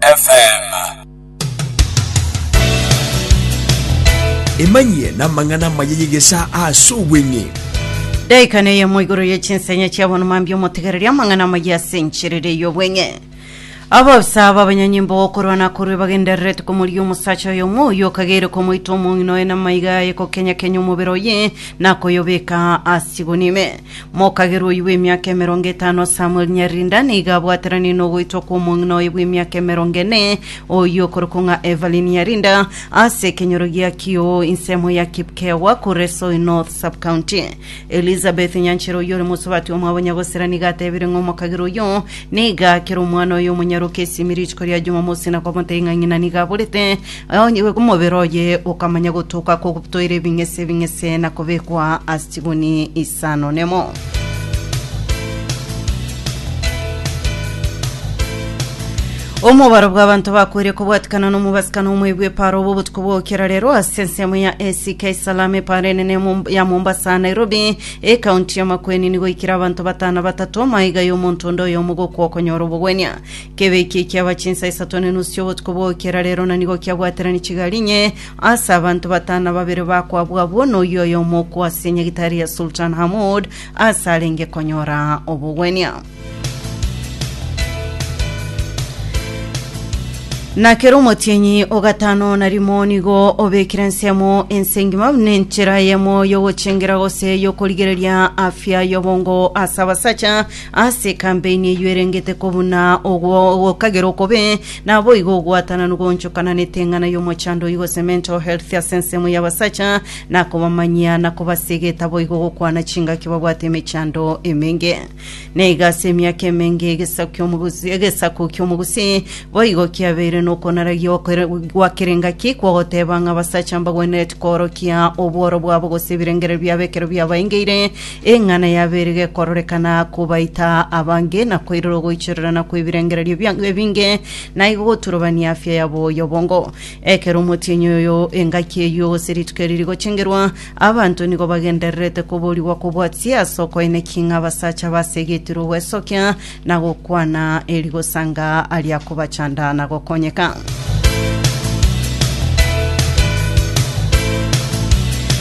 FM. Emanyie namang'ana amaya y'egesaa ase obweng'e. Daika neyemo igoro ye chinsenya chia bono mambi omotegereria amang'ana amaya ase encherere y'obweng'e ababisa babanyanyimbo gokorwana korwe bagendererete komoria omosacha oyo omo oyo okagere komoita omong'ina oye namaiga aye kokenyakenya omobere oye nakoyobeka asigoni ime Mokagerwa oyio bw'emiaka emerongo etano Samuel Nyarinda nigo abwateranirie nogoitwa kw'omong'ina oye bw'emiaka emerongo ene oyio okorokwa ng'a Evelyn Nyarinda ase ekenyoro gia Kioo ensemo ya Kipkewa Kuresoi North Sub-County. Elizabeth Nyanchera oyio ore mosubati omwabo Nyagosera nigo atebire ng'a omokagerwa oyio nigo akere omwana oye omonyaroke esiimi rituko ria Jumamosi na komotebia ng'a ng'ina nigo aborete Onye omobere oye okamanya gotoka kogotoira ebing'ese ebing'ese na kobekwa ase chiguni isano nemo. Omobaro bw'abanto bakoire kobwatikana n'omobasikano omoebu eparo obo obotuko bw'ogokera rero ase ensemo ya ACK Salam eparo enene Mom- ya Mombasa Nairobi ekaunti ya Makueni nigo ikire abanto batano batatu maiga y'omonto onde oyomo gokwa okonyora obogwenia Kebe ekiya ekiaba chinsa isato ne nusu chi'obotuko bw'ogokera rero na nigo kiabwaterani chigari inye ase abanto batano na babere bakwabwo abwo na oyio oyomo okwo ase nyagitari ya Sultan Hamoud ase arenge konyora obogwenia. Na kera omotienyi o gatano na rimo nigo obekire ensemo ense engima buna enchera eyemo y'ogochengera gose y'okorigereria afya y'obongo ase abasacha Ase ekampeini eyio erengete kobuna ogwo gokagera okobe, naboigo ogwatananu goonchokana neteng'ana y'omochando oyi gose mental health ase ensemo y'abasacha, nakobamanyia na kobasega etaboigo gokwana chingaki babwate emechando emenge. Na iga ase emiaka emenge egesaku ki'omogusi egesaku ki'omogusi boigo kiabeire nokonaragia okore gwakerengaki kw'ogoteba ng'a abasacha mbagwenereti koorokia obworo bwabo gose ebirengererio biabo ekero biabaengeire, Eng'ana y'abere gekororekana kobaita abange, na koirora ogoichererana kw'ebirengererio biango ebinge, na igo goturobania afia yabo y'obongo. Ekero omotienyi oyo engaki eyio gose rituko eri rigochengerwa, abanto nigo bagendererete koborigwa kobwatia ase okoenekia ng'a abasacha basegetirwe ogwesokia Na gokwana erigosa nga aria kobachanda na gokonyeka.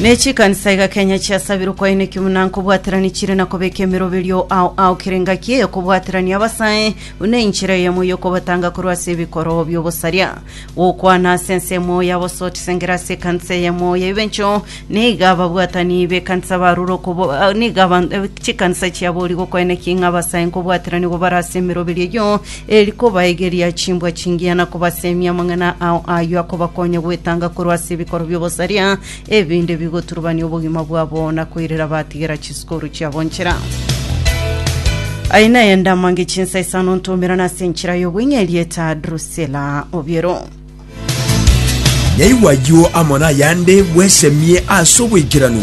Ne chikanisa iga Kenya chiasabirwe kwainekio buna nkobwaterani chire na kobeka emeroberio ao ao kera engaki eyokobwaterania abasae buna enchera eyemo yokobatanga korwa ase ebikoro biobosaria. gokwana ase ensemo ya bosoti sengera ase ekanisa eyemo ya Ibencho, niga ababwatani b'ekanisa barure okobo ah, niga aban- eh, chikanisa chiabori gokoenekia ing'a abasae nkobwaterania gobara ase emeroberio eyio, eri kobaegeria chimbwa chingiya na kobasemia amang'ana ao ayio akobakonya gwetanga korwa ase ebikoro bi'obosaria Ebinde bigoturubania obogima bwabo na koirera batigera chisukuru chiabo nchera. Aye naye ndamange chinsa isano ntomerana ase enchera y'obweng'e erieta Drusela Obiero. Naigwa ayio amo nayande bwesemie ase obwaikeranu.